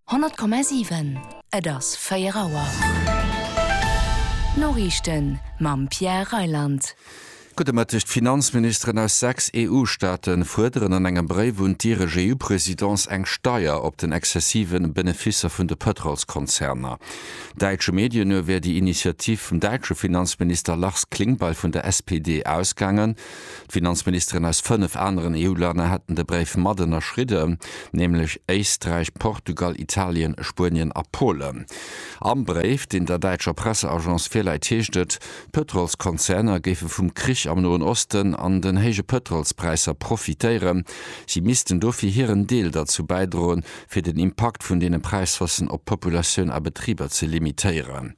100,7 Et ass 4 Auer. D'Noriichten mam Pierre Reyland. Gudde Mëtteg. D'Finanzministeren aus 6 EU-Staate fuerderen an engem Bréif un d'Iresch EU-Presidence eng Steier op den exzessive Beneficer vun de Pëtrolskonzerner. Däitsche Medien no wär déi Initiativ vum däitsche Finanzminister Lars Klingbeil vun der SPD ausgaangen. D'Finanzministeren aus fënnef aneren EU-Länner hätten de Bréif mat ënnerschridden, nämlech Éisträich, Portugal, Italien, Spuenien a Polen. Am Bréif, deen der däitscher Presseagence virläit, heescht et, d'Pëtrolskonzerner géife vum Krich am Noen Osten an den héije Pëtrolspräisser profitéieren. Si missten dofir hiren Deel derzou bäidroen, fir den Impakt vun deene Präishaussen op d'Populatioun a Betriber ze limitéieren.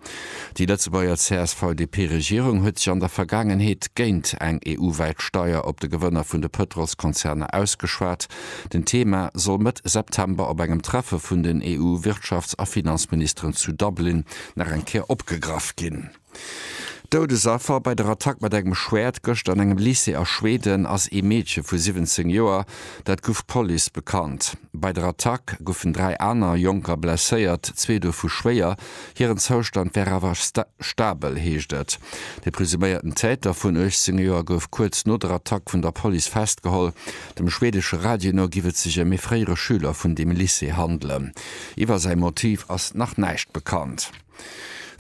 Déi Lëtzebuerger CSV-DP-Regierung huet sech an der Vergaangenheet géint eng EU-wäit Steier op de Gewënner vun de Pëtrolskonzerner ausgeschwat. Den Thema soll Mëtt September op engem Treffe vun den EU-Wirtschafts a Finanzministeren zu Dublin nach eng Kéier opgegraff ginn. Doudesaffer bei der Attack mat engem Schwäert gëschter an engem Lycée a Schweden ass ee Meedche vu 17 Joer, dat gouf d'Police bekannt. Bei der Attack goufen dräi aner Jonker blesséiert, zwee dovu schwéier. Hiren Zoustand wär awer stabel, heescht et. De presuméierten Täter vun 18 Joer gouf kuerz no der Attack vun der Police festgeholl. Dem schwedesche Radio no giff et sech ëm ee fréiere Schüler vun deem Lycée handelen. Iwwer säi Motiv ass nach näischt bekannt.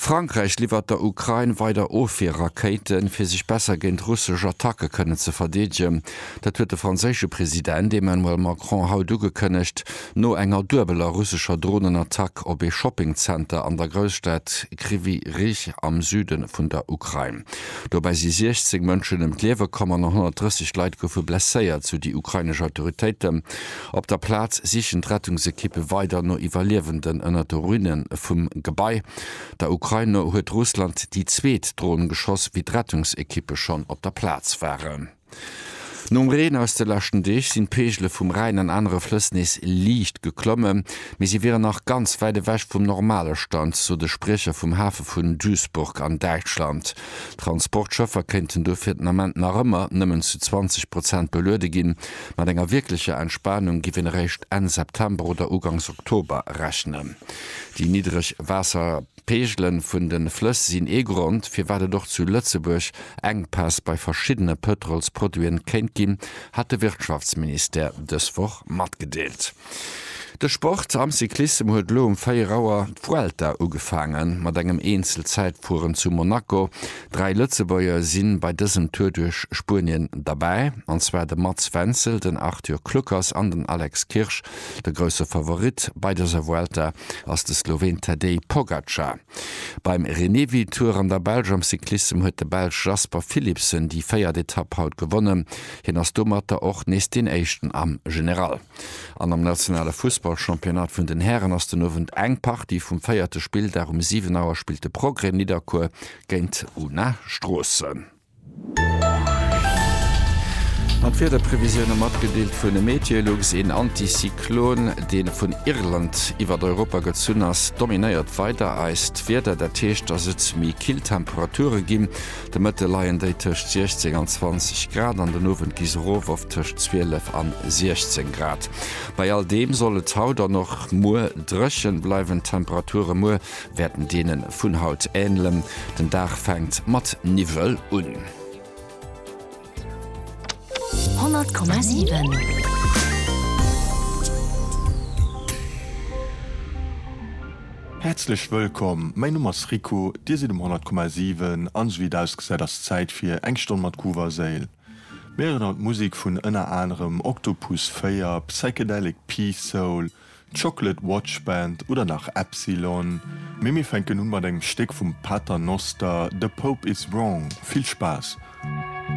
Frankräich liwwert der Ukrain weider Ofwierrakéiten, fir sech besser géint russesch Attacke kënnen ze verdeedegen. Dat huet de franséische President Emmanuel Macron haut ugekënnegt, no enger duebeler russescher Dronenattack op ee Shoppingzenter an der Grousstad Kryvyi Rih am Süde vun der Ukrain. Dobäi si 16 Mënschen ëm d'Liewe komm an 130 Leit goufe blesséiert, sou déi ukrainesch Autoritéiten. Op der Plaz sichen d'Rettungsekippe weider no Iwwerliewenden ënner de Ruine vum Gebai. Der Ukrain no huet Russland déi zweet Dron geschoss, wéi d'Rettungsekippe schonn op der Plaz waren. Nom Reen aus de leschten Deeg sinn d'Peegele vum Rhäin an anere Flëss nees liicht geklomme, mee si wieren nach ganz wäit ewech vum normale Stand, sot e Spriecher vum Hafe vun Duisburg an Däitschland. Transportschëffer kéinten dofir den Ament nach ëmmer nëmmen zu 20 Prozent beluede ginn. Mat enger wierklecher Entspanung giff een eréischt Enn September oder Ugangs Oktober rechnen. Déi niddreg Waasserpeegele vun de Flëss sinn ee Grond, firwat et och zu Lëtzebuerg Enkpäss bei verschiddene Pëtrolsproduiten kéint ginn, hat de Wirtschaftsministère dës Woch matgedeelt. De Sport am Cyclissem huet elo um 4 Auer d'Vuelta ugefaange mat engem Eenzelzäitfueren zu Monaco. Dräi Lëtzebuerger si bei dësem Tour duerch Spuenien derbäi, an zwar de Mats Wenzel, den Arthur Kluckers an den Alex Kirsch. De grousse Favorit bei dëser Vuelta ass de Sloween Tadej Pogacar. Beim Renewi-Tour an der Belsch am Cyclissem huet de Belsch Jasper Philipsen déi véiert Etapp haut gewonnen. Hien ass domatter och nees deen Éischten am General. An am nationale Fussballchampionnat vun den Hären ass den Owend eng Partie vum véierte Spilldag. Um 7 Auer spillt de Progrès Nidderkuer géint Una Stroossen. An d'Wiederprevisioune matgedeelt vun Meteolux, Een Antizyklon, dee vun Irland iwwert Europa gezunn ass, dominéiert weider eist Wieder. Dat heescht, dass et méi kill Temperature ginn. De Mëtte leien déi tëscht 16 an 20 Grad an den Owend gi se erof op tëscht 12 an 16 Grad. Bei all deem soll et haut an och muer dréchen bleiwen. D'Temperature muer wäerten deene vun haut änlen. Den Dag fänkt mat Niwwel un. 100,7. Häerzlech wëllkomm, mäin Numm ass Rico, Dir sidd um 100,7 an esou wéi et ausgesäit ass Zäit fir eng Stonn mat Groove a Séil. Mir héieren haut d'Musek vun ënner anerem Octopus 4, Psychedelic P-Soul, Chocolate Watch Band oder nach Epsilon, mee mir fänken un mat engem Stéck vum Paternoster, The Pope Is Wrong. Vill Spaass!